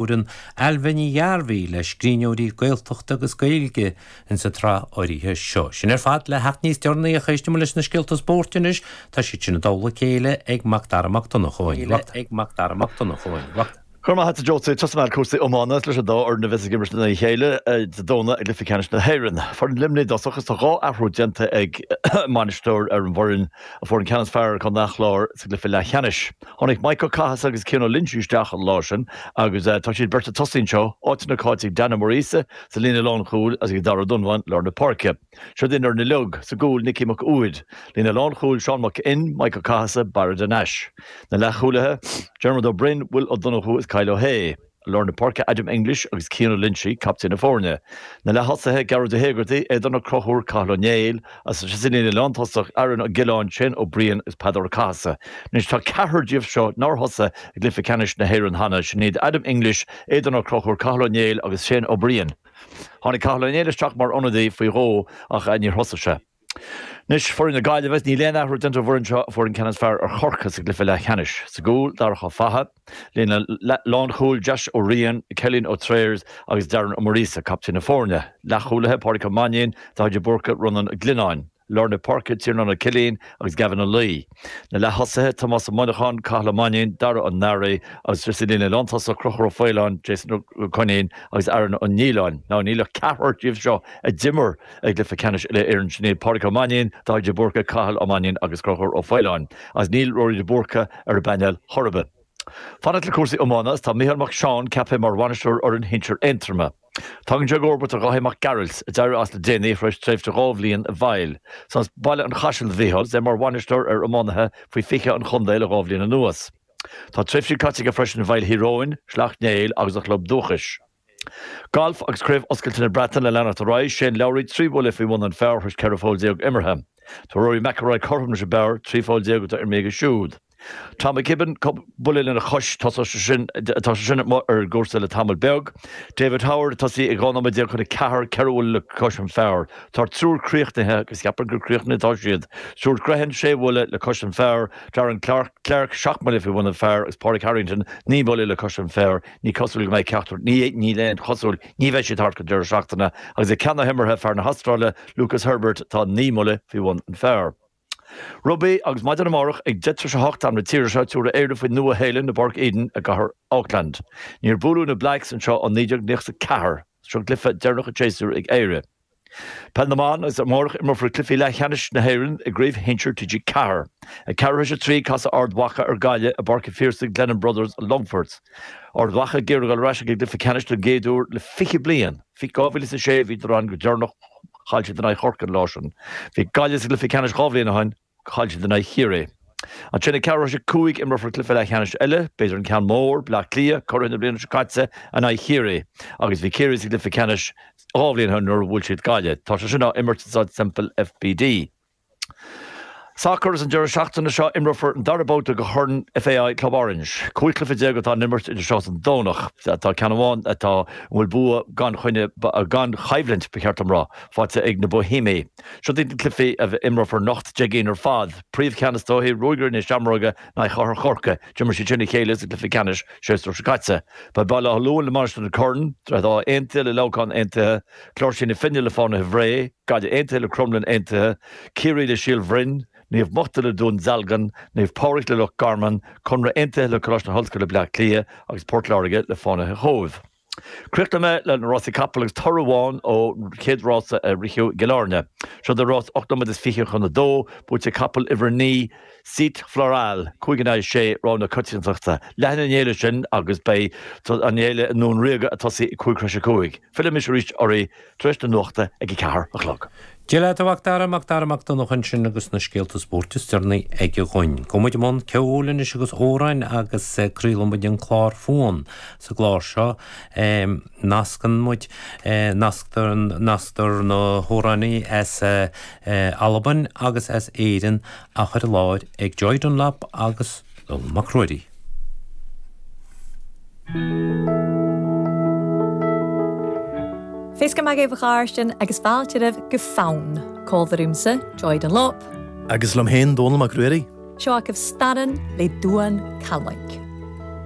Cuireann Ailbhe Ní Ghearbhuigh le scríbhneoirí Gaeltachta agus Gaeilge in sa tsraith áirithe seo. Sin ar fad le theacht níos deireanaí ach éistfidh muid leis na scéalta spóirt anois, tá siad sin i dtoll a chéile ag Macdara Mac Donnchadha. Go raibh maith a't a Josey. Tosóidh mé le cúrsaí iomána is leis an dá fhoireann a bheas ag imirt in aghaidh a chéile Dé Domhnaigh i gCluiche Ceannais na hÉireann. Foireann Luimnigh i dtosach is tá dhá athrú déanta ag an mbainisteoir ar an bhfoireann a fuair an ceann is fearr ar Chontae an Chláir sa gcluiche leathcheannais. Tháinig Mike Ó Cathasaigh agus Cian Ó Loinsigh isteach an lá sin agus tá siad beirt ag tosaí anseo, áit nach áit ag Dan Ó Muiríosa sa líne lánchúil agus ag Darragh Ó Donbháin lár na páirce. Siod í an fhoireann uiliug, sa gcúl, Nicky Mac Uaid, líne lánchúil, Seán Mac Fhinn, Mike Ó Cathasaigh, Barra de Nais. Na leathchúlaithe, Diarmuid Ó Broin, Will Ó Donnchú is Kyle Ó hAodha. Lár na páirce Adam English agus Cian Ó Loinsigh captaen na foirne. Na leath-thosaithe Gearóid Ó hÉigeartaigh, Aidan Ó Conchúir, Cathal Ó Néill, agus sa líne lántosach Aaron Ó Giolláin, Shane Ó Briain agus Peadar Ó Cathasaigh. Anois tá ceathrar díobh seo nár thosaigh i gcluiche ceannais na hÉireann cheana, sin iad Adam English, Aidan Ó Conchúir, Cathal Ó Néill agus Shane Ó Briain. Tháinig Cathal Ó Néill isteach mar ionadaí faoi dhó ach níor thosaigh sé. Anois, foireann na Gaillimhe, níl aon athrú déanta ar an bhfoireann seo, a fuair an ceann is fearr ar Chorcaigh sa gcluiche leathcheannais. Sa gcúl, Darach Ó Fathaigh, líne lánchúil, Josh Ó Riain, Cillian Ó Trears agus Darren Ó Muiríosa, captaen na foirne, leathchúlaithe, Pádraig Ó Mainnín, Dáithí de Búrca, Rónán Ó Glionnáin, lár na páirce, Tiarnán Ó Cillín agus Gavin Ó Laoi. Na leath-thosaithe, Tomás Ó Monacháin, Cathal Ó Mainnín, Dara Ó Náraigh agus sa líne lántosach, Conchúr Ó Faoláin, Jason Ó Coinín agus Aaron Ó Nialláin. Now níl ach ceathrar díobh seo a d'imir i gCluiche Ceannais Uile Éireann, sin iad Pádraig Ó Mainnín, Dáithí de Búrca, Cathal Ó Mainnín agus Conchúr Ó Faoláin. Agus níl Rory de Búrca ar an bpainéal chor ar bith. Fanacht le cúrsaí iomána, tá Micheál Mac Seáin ceaptha mar bhainisteoir fhoireann shinsir Aontroma. Tagann sé i gcomharbacht ar Dháithí Mac Gearailt, a d'éirigh as le déanaí tar éis tréimhse dhá bhliain i bhfeighil. Is as Baile an Chaisil do Mhícheál 's é mar bhainisteoir ar iománaithe faoi 20 an chontae le dhá bhliain anuas. Tá tréimhsí caite aige freisin i bhfeighil Thír Eoghain, Shleacht Néill agus a chlub dúchais. Galf agus Craobh Oscailte na Breataine ag leanacht ar aghaidh, Shane Lowry 3 bhuille faoi bhun an phar tar éis 14 pholl imeartha. Tá Rory McIlroy cothrom leis an bpar 13 pholl atá imeartha aige siúd. Tom McKibbin buille lena chois tosaigh, tá sé sin amuigh ar an gcúrsa le tamall beag. David Howard ag tosaí ag 12 nóiméad chun a ceathair, ceithre bhuille le cois an phar. Tá an triúr críochnaithe agus ceapaim gur críochnaithe atá siad. Stuart Grehan sé bhuille le cois an phar, Darren Clarke seacht mbuille faoi bhun an phar agus Pádraig Harrington naoi mbuille le cois an phar. Ní cosúil go mbeidh ceachtar, níl aon chosúil, ní bheidh siad thart go deireadh seachtaine. Agus ag ceann na himeartha, fear na hAstráile, Lucas Herbert atá naoi mbuille faoi bhun an phar. Rugbaí agus maidin amárach ag 10:38 am na tíre seo tabharfaidh Éire faoin Nua-Shéalainn i bPáirc Eden i gcathair Auckland. Níor buaileadh na Blacks anseo ó 1994. Seo cluiche deireanach an tséasúir ag Éire. Peil na mBan agus amárach imreofar cluichí leathcheannais na hÉireann i gCraobh Shinsir TG4. Ag ceathrú théis a trí casfaidh Ard Mhacha ar Ghaillimh i bPáirc an Phiarsaigh Glennon Brothers Longfort. Ard Mhacha ag iarraidh a dhul ar ais ag an gcluiche ceannais don gcéad uair le 20 bliain. 2006 a bhíodar ann go deireanach. Chaill siad in aghaidh Chorcaí an lá sin. Bhí Gaillimh sa gcluiche ceannais dhá bhliain ó shin. Chaill siad in aghaidh Chiarraí. Ansin ag ceathrú théis a cúig imreofar cluiche leathcheannais eile, b'fhéidir an ceann mór, Baile Átha Cliath, curaithe na bliana seo caite, in aghaidh Chiarraí. Agus bhí Ciarraí sa gcluiche ceannais dhá bhliain ó shin nuair a bhuail siad Gaillimh. Tá sé sin á imirt i Staid Semple FBD. Sacar Is an deireadh seachtaine seo imreofar an dara babhta de Chorn FAI Club Orange. Cúig chluiche déag atá á n-imirt idir seo is an Domhnach. Tá ceann amháin atá a bhfuil bua gan choinne, gan choimhlint ba cheart dom rá, faighte ag na Boihéimigh. Seo iad na cluichí a imreofar anocht, Dé hAoine ar fad. Príomhcheann is dóiche Ruagairí na Seamróige in aghaidh Chathair Chorcaí. D'imir siad sin a chéile sa gcluiche ceannais séasúr seo caite. Beidh Baile Átha Luain le Mainistir na Corann. Droichead Átha Aontaithe le Leamhcán Aontaithe. Cláirsigh na Finne le Fánaithe Bhré, Gaillimh Aontaithe le Cromghlinn Aontaithe, Ciarraí le Síol Bhroin, Naomh Mochta le Dún Dealgan, Naomh Pádraig le Loch Garman, Conradh Aontaithe le Coláiste na hOllscoile Bleá Cliath agus Port Láirge le Fánaithe Chóibh. Críochnóidh mé le na Rásaí Capall agus toradh amháin ó chéad rása a ritheadh i gCill Áirne. Seod é rás ocht nóiméad is fiche chun a dó, buaite ag capall uimhir a naoi, Cite Floral cúig in aghaidh a sé, rogha na coitiantachta. Leanann an fhéile sin agus beidh an fhéile i nDún Ríoga ag tosaí ag cúig tar éis a cúig. Fillfidh mise arís oraibh tar éis na nuachta ag a ceathair a chlog. Dia leat a Mhacdara, Macdara Mac Donncha ansin agus na scéalta spóirt is deireanaí aige dhúinn. Gabhfaidh muid i mbun ceoil anois agus amhráin agus craolfaidh muid an clár Fonn. Sa gclár seo nascann muid, nasctar, nasctar na hamhránaithe as. Albain agus as Éirinn á chur i láthair ag Joy Dunlop agus Dónall Mac Ruairí. Feasgar math dhuibh a chàirdean agus fàilte oirbh gu Fonn, còmhla riumsa, Joy Dunlop. Agus liom féin, Dónall Mac Ruairí. Seo agaibh Staran le Duan Callaig.